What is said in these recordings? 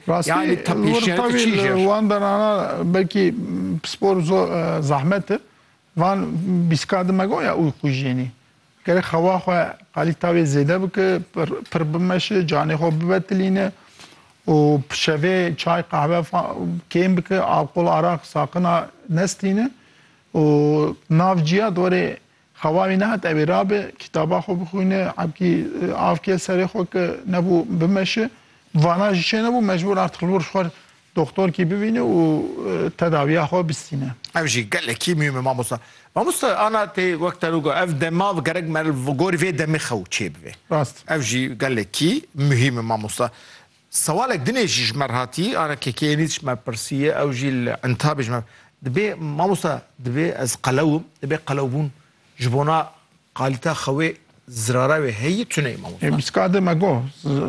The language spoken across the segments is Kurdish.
Rastî wir tevî li wan derana belkî pispor zor zehmet e. Van bîstka di me got ya uy xwe jênî. Gerek xewa xwe qalî tavê zêde bike, pir bimeşe, canê xwe bivetilîne û şevê çay qehve kêm bike, alqol araq saqina nestîne û nav ciya di warê Xewa wî nehat ew ê rabe, kitaba xwe bixwîne, ebkî av ke serê xwe ke nebû bimeşe. Vana jî çênebû, mecbûr artîk li wir xwe doxtorkî bivîne û tedawiya xwe bistîne. Ev jî gelekî mûhîm e mamosta. Mamosta ana tê wek te got ev dema gerek meriv gorî vê demê xew çêbibe. Rast. Ev jî gelekî mûhîm e mamosta. Sewalek dinê jî ji me re hatî, ara KKNî ji me pirsiye, ew jî li Entabê ji me. Dibê mamosta dibê ez qelew im, dibê qelewbûn ji bona qalîta xewê zirara wê heyî tune ye mamosta. Mîska de me got.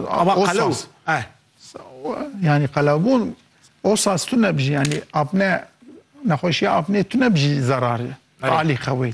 Ava qelew eh. Yanî qelewbûn o saz tune bijî yanî apne nexweşiya apnê tune bijî zerarê qalî xewê.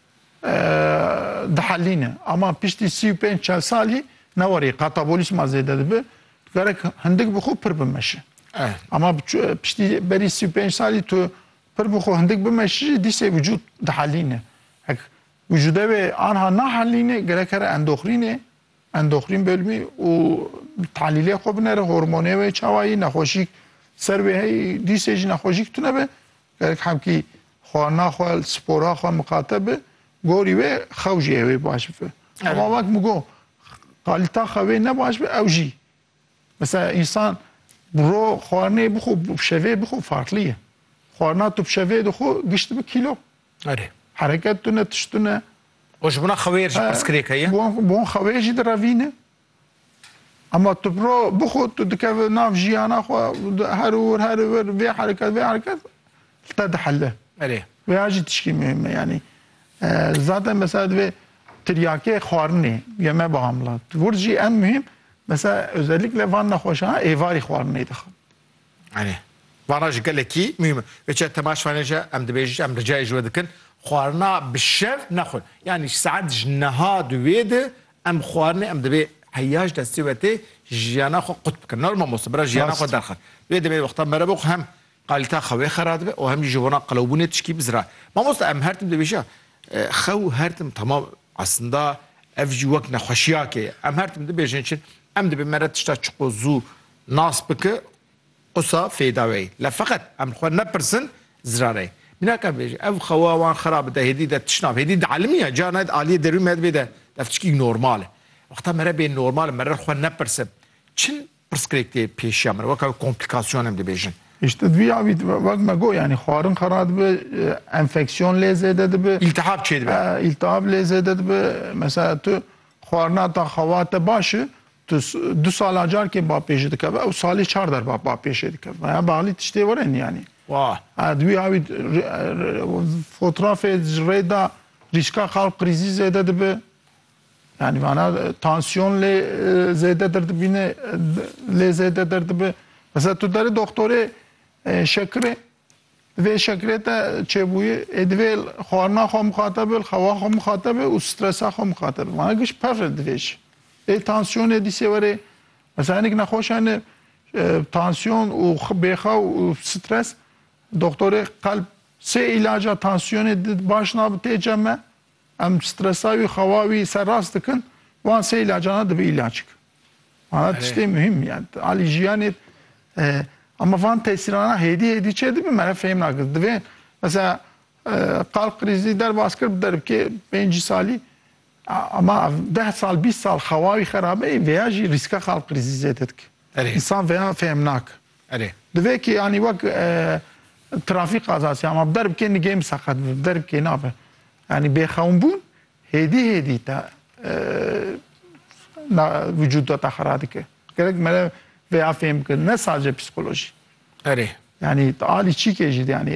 dihelîne. Ama piştî sî û pênc çel salî ne warî katabolîsma zêde dibe, gerek hindik bi xwe pir bimeşe. Ama piştî berî sî û pênc salî tu pir bi xwe hindik bimeşî jî dîsê vücûd dihelîne. Hek vücûde wê anha nahelîne gerek here endoxrînê, endoxrîn bölmî û tahlîlê xwe binere, hormonê wê çawa yî, nexweşîk ser wê heyî, dîsê jî nexweşîk tune be, Gerek hemkî xwarina xwe, spora xwe miqate bi, gorî wê xew jî hêvî baş bibe. Hema wek min got, qalîta xewê ne baş be ew jî. Mesela însan bi ro xwarinê bixwe û bi şevê bixwe farklî ye. Xwarina tu bi şevê dixwe gişt dibe kîlo. Erê. Hereket tune, tişt tune. Û ji bona xewê re jî pirsgirêk heye? Bi wan xewê jî direvîne. Ama tu bro bixwe tu dikeve nav jiyana xwe her ûr her ûr vê hereket vê hereket li te dihelle. Erê. Vê ya jî tişkî muhîm e yanî. Zaten mesela divê tiryakê xwarinê yeme bi hamla. Vir jî en muhîm mesela özellikle van nexweşana êvarî xwarinê dixin. Anî. Vana ji gelekî muhîm e. Vê çiya temaş fanê ji em dibêjin, em ricayê ji we dikin, xwarina bi şev nexwin. Yanî ji saet ji niha di wê di em xwarinê em divê heya ji destê we tê jiyana xwe qut bikin. Nor mamoste bira jiyana xwe Rast. derxist. Divê demê wextan mere bo ku hem qalîteya xewê xera dibe û hem jî ji bona qelewbûnê tişkî bi zira. Mamoste em her tim dibêjin xew her tim tamam eslinda ev jî wek nexweşiyakê ye. Em her tim dibêjin çi em dibê mere tişta çiqo zû Nas bike qisa fêdaweyî. La feqet em li xwe nepirsin zirareyî. Mînak em bêjin ev xewa wan xerab de hêdî de tişt nab. Hêdî di elmî ye, carna di aliyê derûn me de bê de ev tiştîk normal e. Wexta me re bê normal me re li xwe nepirsin çin pirsgirêk tê pêşiya min re weka wê komplikasyon em dibêjin. Îşte di vî avî de wek me got yanî xwarin xera dibe, enfeksyon lê zêde dibe. Îltihab çêdibe. Îltihab lê zêde dibe. Mesela tu xwarina ta xewa te baş e. Tu du sala carkê bapê jî dikeve ew salê çar derba bapê jê dikeve. Meya Bahlî tiştê were niyanî. Wah. Di wî awî fotrafê ji rê da rîska qalb krîzî zêde dibe. Yani vana tansiyon lê zêde derdibîne lê zêde derdibe. Mesela tu derê doktorê şekirê Di vê şekilê te çêbûyî ê divê xwarina xwe mixate be, xewa xwe mixate be û stresa xwe mixate be. Mana giş pevr e divê jî. Ê tansiyonê dîsê were mesela hinek nexweş hene tansiyon û bêxew û stres doktorê qelb sê îlaca tansiyonê di baş nabe tê cem e. Em stresa wî xewa wî serrast dikin, wan sê îlacan e dibe îlac ki. Mana tiştê muhîm yani alî jiyanê ama van tesîrana hêdî hêdî çê dibe me re fêm nake. Divê mesela qal krîzî derbas kir bi derbikê pêncî salî ama ev deh sal bîst sal xewa wî xerabe ê vêya jî rîska qal krîzî zêde dike. Însan vêya fêm nake. Erê. Di vê kê yanî wek trafîk qazas ya ma bi der bikê nigêm seqet bi der bikê nabe. Yanî bêxewnbûn hêdî hêdî te vücuda te xera dike. Gerek me vê ya fêm bikin ne sadece psikolojî. Erê. Yanî alî çîkê jî yanî